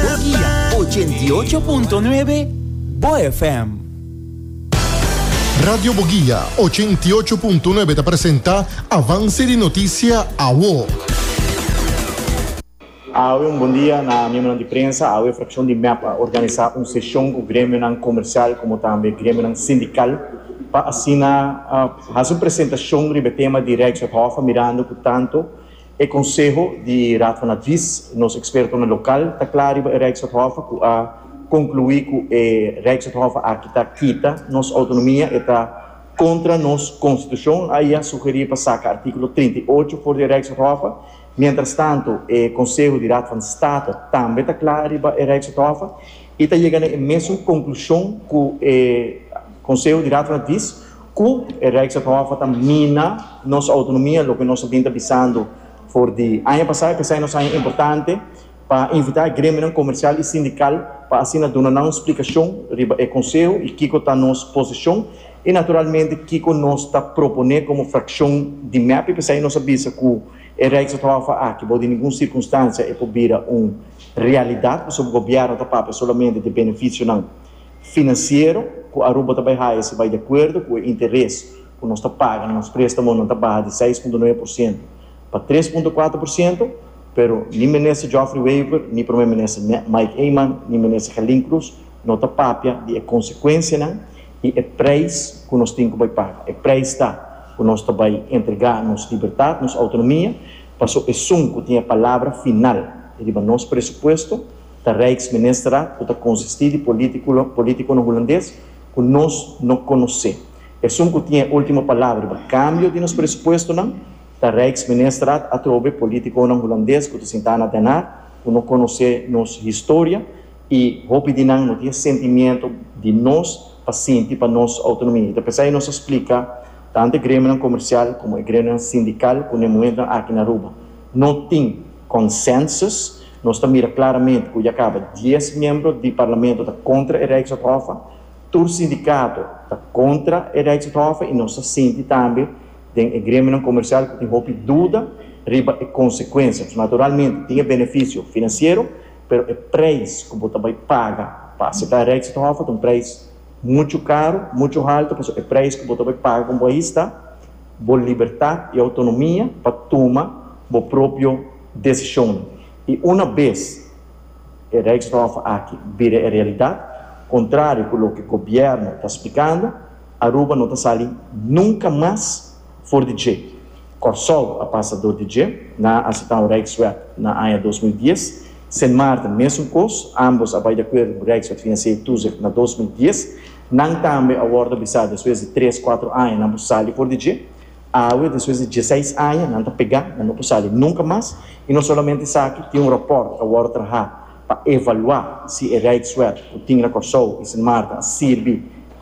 Bo guia ochenta i ocho punto nuebe, Bo FM. Radio Bo Guia ochenta i ocho punto nuebe ta presenta Avance di Noticia Awo. Awe un bon dia na miembronan di prensa. Awe fraccion di mep a organisa un sesion cu gremionan comercial como tambe gremionan sindical pa asina hasi un presentacion riba e tema di Rijkswet Hof mirando cu tanto E konseho di Raad van Advies, nos ekspertonan lokal, ta kla riba e Rijkswethof ku a konkluí ku e Rijkswethof aki ta kita nos outonomia, e ta kontra nos konstitushon. Ai a sugerí pa saka artíkulo trinta i ocho for di e Rijkswethof. Mientrastantu, e konseho di Raad van State tambe ta kla riba e Rijkswethof i ta yega na e mesun konklushon ku e konseho di Raad van Advies. Cu e Rijkswaterhof a ta mina nos autonomia, loke nos a bin ta bisando for di aña pasa, e pesai nos aña importante pa invita e gremionan comercial y sindical pa asina duna nan un splicacion riba e conseho y kico ta nos posicion y naturalmente kico nos ta propone como fraccion di mep. E pesai nos a bisa cu e Rijkswaterhof aki bou di ningun circunstancia e por bira un realidad pasobra gobierno ta papia solamente di beneficionan Financiero cu Aruba ta bay haya si bay di acuerdo cu e interes cu nos ta paga na nos prestamonan ta baha di seis punto nuebe por ciento pa tres punto cuatro por ciento, pero ni Minister Geoffrey Wever, ni Prome Minister Mike Eman, ni Minister Gelin Croes no ta papia di e consecuencianan y e prijs cu nos tin cu bay paga. E prijs ta cu nos ta bay entrega nos libertad, nos autonomia, paso esun cu tin e palabra final riba nos presupuesto, Ta Rijksministerraad cu ta consisti di politiconan Hulandes cu nos no conoce. Esun cu tin e ultimo palabra riba cambio di nos presupuestonan ta Rijksministerraad atrobe politiconan Hulandes cu ta sinta na Den Haag cu no conoce nos historia y hopi di nan no tin e sentimiento di nos pa sinti pa nos autonomia. Y ta por esey nos a splica tanto e gremionan comercial como e gremionan sindical cu na e momento aki na Aruba no tin consensus Nos ta mira klaramente ku ya kaba dies miembro di parlamento ta kontra e Rijksdaghofe, tur sindikato ta kontra e Rijksdaghofe i nos ta sinti tambe den e gremionan komersial ku tin hopi duda riba e konsekuensia. Naturalmente tin e benefisio finansiero, pero e preis ku bo ta bai paga pa aseptá e Rijksdaghofe ta un preis muchu karu, muchu haltu, pasobra e preis ku bo ta bai paga komo bo ahista bo libertat i outonomia pa tuma bo propio. Desishon i una bes e Rijkshof aki bira e realidat, kontrario ku loke gobièrnu ta splikando, Aruba no ta sali nunka mas for di dje. Kòrsou a pasa dor di dje. Nan a seta un Rijkswet na aña dos mil dies. Sint Maarten mesun kos, ámbos a bai di akuerdo ku Rijkswet Financiële Toezicht na dos mil dies. Nan tambe a wòrdu bisá despues di tres, kuater aña nan por sali for di dje. Awe, despues di dieseis aña, nan ta pegá, nan no por sali nunka mas, i no solamente esaki, tin un ròpòrt a wòrdu trahá pa evaluá si e Rijkswet ku tin na Kòrsou i Sint Maarten a sirbi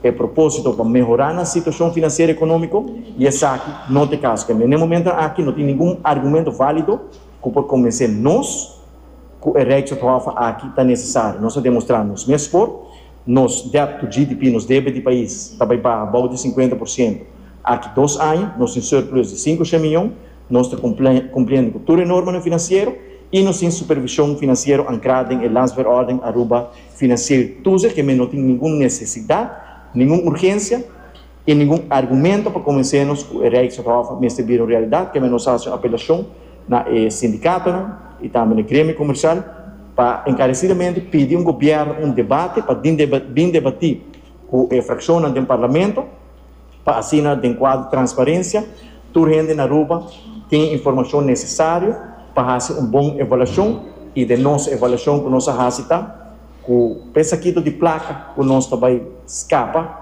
pa e propósito pa mehorá nan situashon finansiero i ekonómiko, i esaki no ta e kaso. Kende, n'e momentonan aki no tin ningun argumento válido ku por konvensé nos ku e Rijkswethof aki ta nesesario. Nos a demostrá nos mes for. Nos debt to GDP, nos debe di pais, ta bai baha bou di sinkuenta por sientu. Aki dos aña nos tin surplus di sinku shen miyon, nos ta cumpliendo cu tur e normanan financiero y nos tin supervision financiero ancra den e Landsverordening Aruba Financier Toezicht, ke men no tin ningun necesidad, ningun urgencia, Tin ningun argumento pa konvensenos ku e Rijkshof mester bira un realidat kende nos hasi un apelashon na e sindikatonan i tambe na e gremio komersial pa enkaresidamente pidi un gobièrnu un debate pa bin debatí ku e frakshonnan den parlamento pa asina den kuadro transparensia tur hende na Aruba tin informashon nesesario pa hasi un bon evaluashon i den nos evaluashon ku nos a hasi ta ku pe sakito di plaka ku nos ta bai skapa.